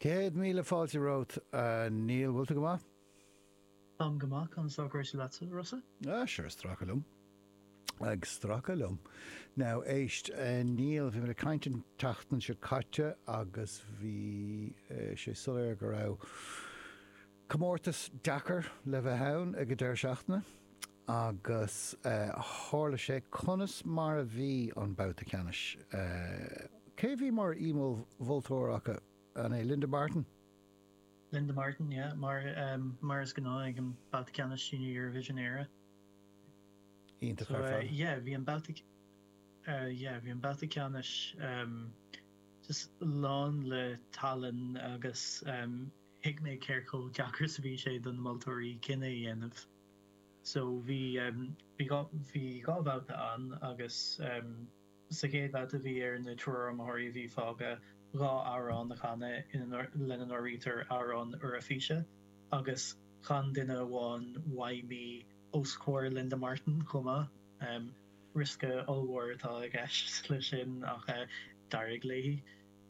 Céad míle fáilte romhat, a Neil. Bhfuil tú go maith? Táim go maith. Conas tá cúrsaí leatsa, Rossa? Ah, sure, ag stracadh liom. Ag stracadh liom. Now, éist, a Neil, bhí mé ag caint an tseachtain seo caite agus bhí sé soiléir go raibh Comórtas deacair le bheith ann ag an deireadh seachtaine agus tharla sé. Conas mar a bhí an babhta ceannais? Cé a bhí mar aoi mholtóir acu? An é Linda Martin? Linda Martin, yeah. Mar mar is gnáth ag an babhta ceannais Junior Eurovision Éire. Iontach ar fad. Yeah, bhí an babhta yeah, bhí an babhta ceannais um, just lán le talann agus um, thuig mé cé chomh deacair is a bhí sé do na moltóirí cinneadh a dhéanamh. So bhí, bhí dhá, bhí dhá bhabhta ann agus sa chéad bhabhta bhí ar an triúr iomaitheoirí a bhí fágtha dhá amhrán a chanadh ina, lena n-áirítear amhrán Euraifíse agus chan duine amháin Why Me os comhair Linda Martin chomh maith. Riosca ollmhór atá i gceist leis sin ach d'éirigh léi.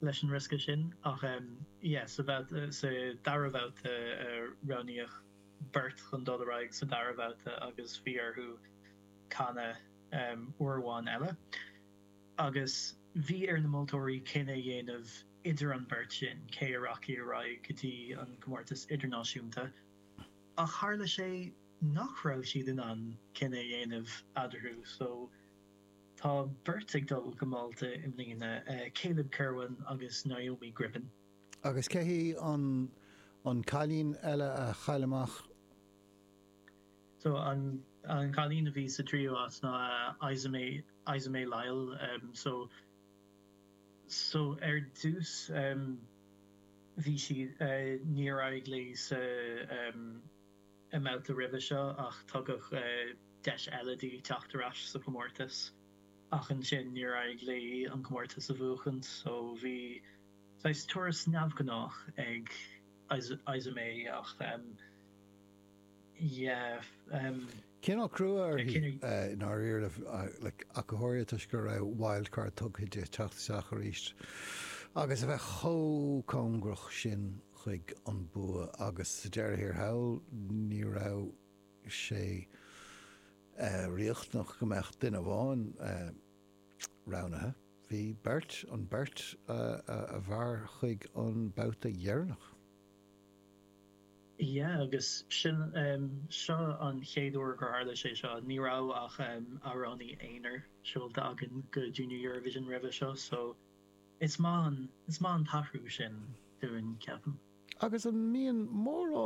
leis an riosca sin ach sa dara babhta roghnaíodh beirt chun dul ar aghaidh sa dara babhta agus bhí orthu canadh uair amháin eile agus bhí ar na moltóirí cinneadh a dhéanamh idir an bheirt sin cé a rachadh ar aghaidh go dtí an comórtas idirnáisiúnta ach tharla sé nach raibh siad in ann cinneadh a dhéanamh eadarthu so Tá beirt ag dul go Málta i mbliana, Caleb Kirwan agus Naomi Griffin. Agus cé hí an cailín eile a chaill amach? So an cailín a bhí sa tríú áit ná Isa May Lyle. So so ar dtús bhí sí níor éirigh léi sa. i mbabhta roimhe seo ach tugadh deis eile di teacht ar ais sa chomórtas. Ach ansin níor éirigh léi an comórtas a bhuachaint so bhí saghas turas neamhghnách ag Isa May ach yeah. Cineál crua uirthi i ndáiríre ach go háirithe toisc go raibh wildcard tugtha di teacht isteach arís agus a bheith chomh cóngarach sin. chuig an bua agus sa deireadh thiar thall ní raibh sé riachtanach go mbeadh duine amháin roghnaithe, bhí beirt, an bheirt a mhair chuig an babhta dheireanach. Yeah agus sin, seo an chéad uair gur tharla sé seo, ní raibh ach amhránaí aonair seolta againn go Junior Eurovision roimhe seo so, Is maith an t-athrú sin dúinn, ceapaim. Agus an mbíonn mórán.